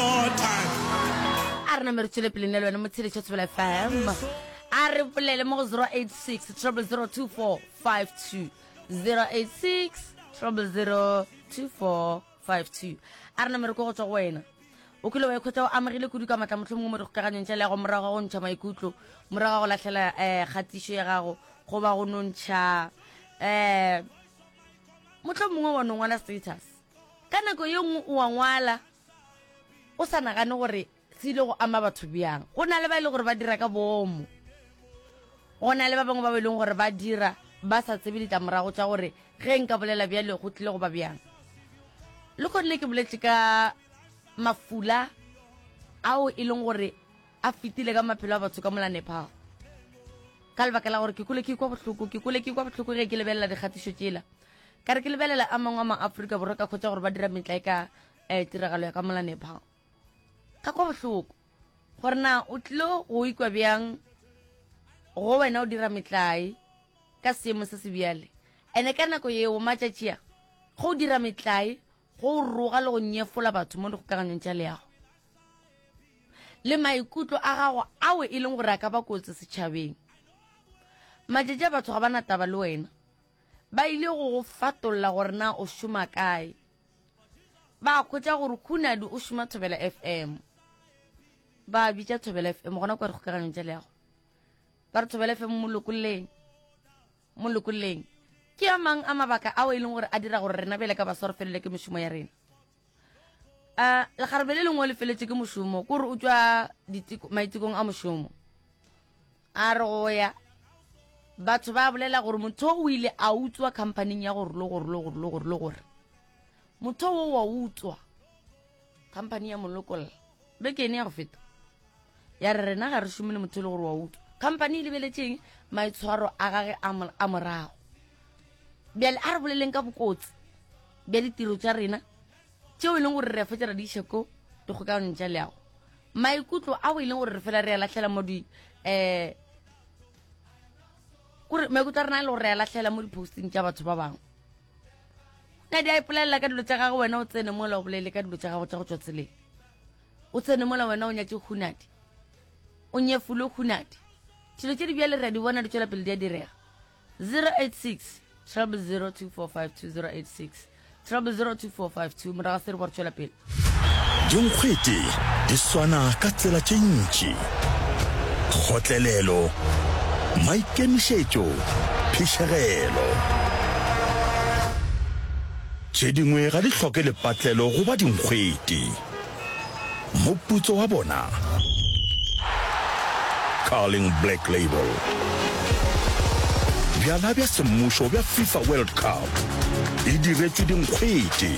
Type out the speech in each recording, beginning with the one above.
a re name re tswele pele nne le wena motshedi tshotsebela fm a re bolele mo go 086 02452 086 02452 a re name re ko go tswa go wena o kile wa ikhwetsa o amegile kudu ka matla motlho mongwe mo dikgokaganyong tša le yago morago ga go ntšha maikutlo morago ga go latlhela um eh, kgatišo ya gago goba go nontšha um eh, motlho mongwe wa nongwala status ka nako ye nngwe o wa ngwala o sa nagane gore se ile go ama batho bjang go na le ba e le gore ba dira ka boomo go na le ba bangwe ba ba e leng gore ba dira ba sa tsebe ditlamorago tša gore ge nka bolela bjale go tlile go ba bjang le kgonne ke boletše ka mafula ao e leng gore a fetile ka maphelo a batho ka mola nepal ka lebaka la gore ke kole ke kwa bohloko ke kole ke kwa bohloko ge ke lebelela dikgatišo tšela ka re ke lebelela a mangwe a maaforika borwa ka kgotsa gore ba dira metla e ka um tiragalo ya ka molanepha ka kwa bohloko gore na o tlilo go ikwa bjang go wena o dira metlae ka seemo se se bjale ene ka nako yeo matšatši a go o dira metlae go roga le go nyefola batho mo dikgokaganyong tša leago le maikutlo a gago ao e leng gore a ka ba kotsi setšhabeng matšatši a batho ga ba na taba le wena Ba ile go go fatolla gore na o šoma kae. Ba khwetša gore Khunadi o šoma Thobela FM. Ba bitša Thobela FM gona kwa dikgokaganyong tša leago. Ba re Thobela FM mo lokolleng. Mo lokolleng. Ke a mang a mabaka ao e leng gore a dira gore rena bjale ka baswa re felelwe ke mešomo ya rena? um legarebe le lengwe le feletše ke mošomo kore o tšwa maitekong a mošomo a re go ya batho ba bolela gore motho o ile a utswa companyng ya gore lo gore lo gore lo gore lo gore motho wo wa utswa company ya molokolla beke ene ya go feta ya re rena ga re šome le motho e le gore wa utswa company e lebeletšeng maitshwaro a gage a morago bjale a re boleleng ka bokotsi bja ditiro tša rena tšeo e leng gore re a fetša ra di iša ko dikgokaganong tša leago maikutlo ao e leng gore re fela re a latlhela mo di um kore maikutlo a rena a le gore re a latlhela mo di-posting tša batho ba bangwe na di a ipolelela ka dilo tša gage wena o tsene mola o bolele ka dilo tša gago tša go tswa tseleng o tsene mola wena o nyatse hunadi o nyefule hunadi dilo tše di bjale re a di bona di tswela pele di a direga 086 3002452 086 3002452 morago ga se re bo re tšwela pele dinkgwete di swana ka tsela tše ntši kgotlelelo maikemišetšo phišegelo tše dingwe ga di hloke lepatlelo go ba dinkgwete Moputso wa bona, Carling Black Label. Bjala bja semmušo bja FIFA World Cup e diretšwe dinkgwete.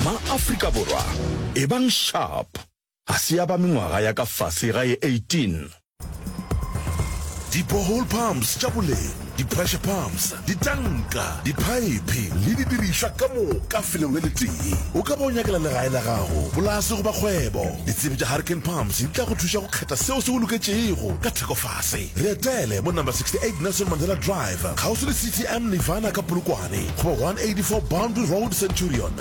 Ma-Afrika Borwa, ebang sharp, ga se ya ba mengwaga ya ka fase ga ye 18. Di-borehole pumps tša boleng, di-pressure pumps, ditanka, diphaephe le didirišwa ka moka felong le letee. O ka ba o nyakela legae la gago, polase goba kgwebo. Ditsebi tša Hurricane Pumps di tla go thuša go kgetha seo se go loketšego ka thekofase. Re etele mo Number 68 Nelson Mandela Drive, kgauswi le CTM Nirvana ka Polokwane, goba 184 Boundary Road, Centurion.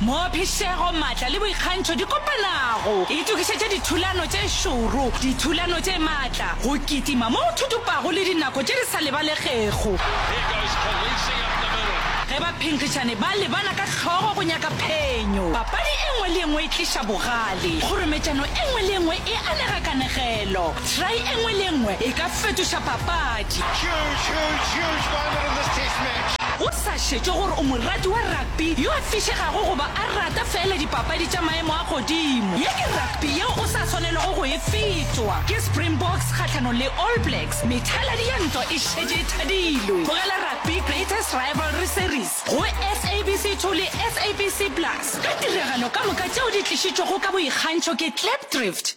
Moo phišego, maatla le boikgantšho di kopanago, itokišetše dithulano tše šoro, dithulano tše maatla, go kitima mo go thutupago le dinako tše di sa lebalegego. Ge baphenkgišani ba lebana ka hlogo go nyaka phenyo, papadi e nngwe le e nngwe e tliša bogale. Kgorometšano e nngwe le e nngwe e anega kanegelo. Try e nngwe le e nngwe e ka fetoša papadi. Go sa šetšwe gore o morati wa rugby, rugby yo a fišegago goba a rata feela dipapadi tša maemo a godimo. Ye ke rugby yeo o sa swanelego go e fetwa. Ke Springboks kgahlanong le All Blacks, methaladi ya ntwa e šetše e thadilwe. Tlogela rugby Greatest Rivalry Series go SABC 2 le SABC Plus ka tiragalo ka moka tšeo di tlišitšwego ka boikgantšho ke Klipdrift.